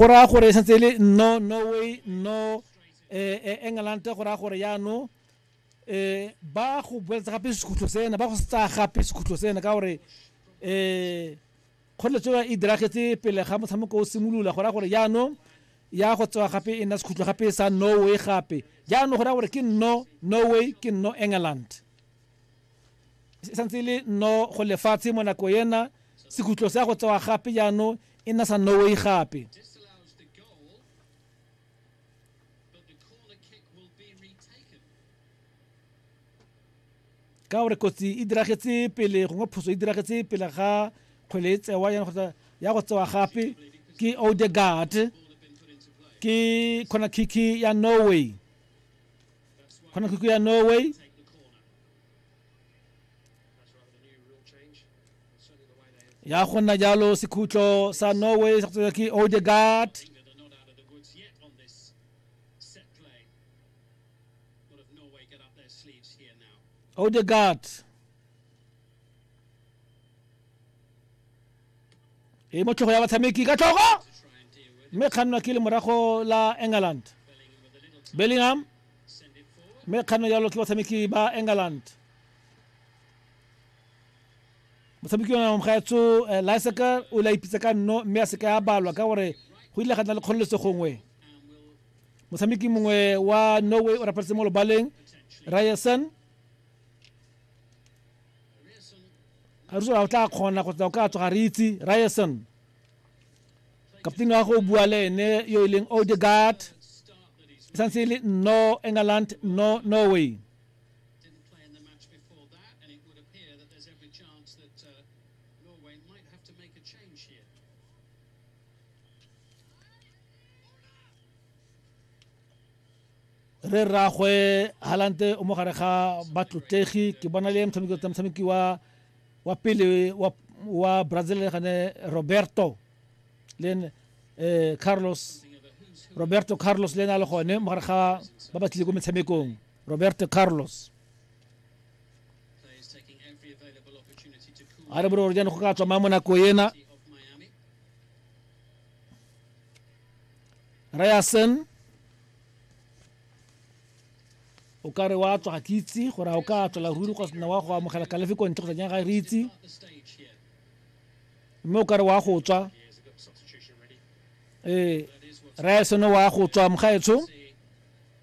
go raya gore e santse e le no norway no eh, eh, england go raya gore yaanong um ba go boeletsa gape sekhutlho sena ba go se tsaya gape sekhutlho sena ka gore um kgoreletso e diragetse pele ga motshameko o simolola go raya gore yaanong ya go tsewa gape e nna sekhutlho gape sa norway gape jaanong go raya gore ke no norway ke no england e santse e le no go lefatshe mo nako ena sekhutlho se ya go tsewa gape jaanong e nna sa Norway gape. ka gore kotsi e diragetse pele gongwe phoso e diragetse pele ga kgwele e tsewa yana kgotsa ya go tsewa gape ke odegard ke khona kiki ya norway khona kiki ya norway ya go nna jalo sekhutlo sa norway sa tswa ke odegard odegard e mo tlhogo ya batshameki ka tlhogo mme kgannwa ke le morago la england bellingham mme kgannwa jalo ke batshameki ba england motshameki ona mgaetso eh, lyseker o ile a ipitsa ka nno mme a seka ya balwa ka gore go ile ga nna le kgololese gongwe motshameki mongwe wa norway o rapeletse mo lobaleng ryerson ga re sola o tla kgona kgotsa o ka tsoga re itse ryerson kaptene wa go o bua le ene yo e leng odegard e santse e le no england no norway Didn't play in the match before that, and it would appear that there's every chance that uh, Norway might have to make a change here. re rragwe halante o mo gare ga batlotlegi ke bona le motshameki wa wa pele wa wa brazil gane roberto le eh, carlos roberto carlos le ena le gone mo gare ga ba ba tlile ko metshamekong Roberto Carlos a re bore gore jane go ka tswa ma mo nako ena Ryerson o ka re wa tswa ga ke itse gore a o ka tswela ruri go sena wa go amogela kalefi ko ntle go tsanyang ga re itse mme o ka re wa go tswa ee Ryerson wa go tswa mogaetsho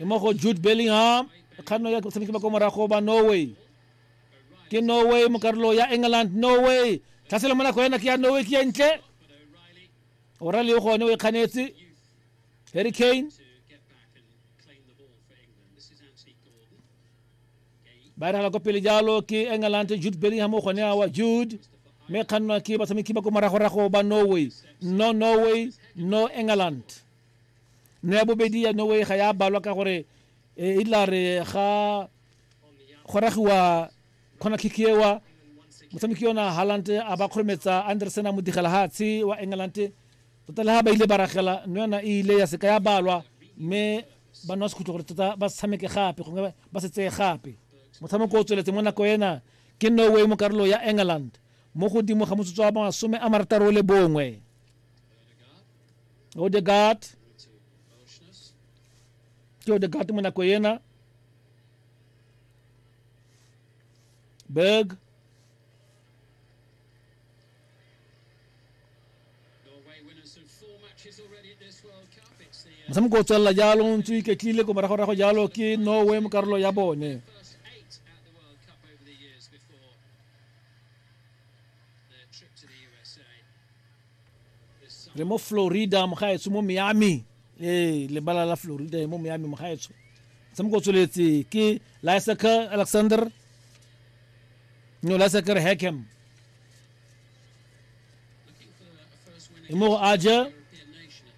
e mo go jude bellingham kganno ya tshameki ba ko morago ba norway ke norway mo karolo ya england norway tlhaselo mo nako ena ke ya norway ke entle orale o gone o e kganetse harry kane ba e ragela ko pele jalo ke england jude bellingham o gone wa jude mme kgannwa ke batshameki ba ko moragorago ba norway no norway no england no ya bobedi ya norway ga ya balwa ka gore e, e tla re ga go ragiwa kgona kikiewa motshameki yona haland a ba kgorometsa anderson a modigela hatshe wa england tota le ha ba ile ba ragela no yona e ile ya seka ya balwa mme ba nwa sekhutlo gore tota ba se tshameke gape gongwe ba se tseye gape motshameko o tsweletse mo nako ena ke norway mo karolo ya england mo godimo ga motsotso wa masome a marataro le bongwe odegard ke odegard mo nako ena berg motshameko o tswelela jalo ntse o iketlile ko moragorago jalo ke norway mo karolo ya bone re mo florida mogaetsho mo miami ee lebala la florida mo miami mogaetsho motshameko o tsweletse ke lysaker alexander no lysaker hackham Mo aja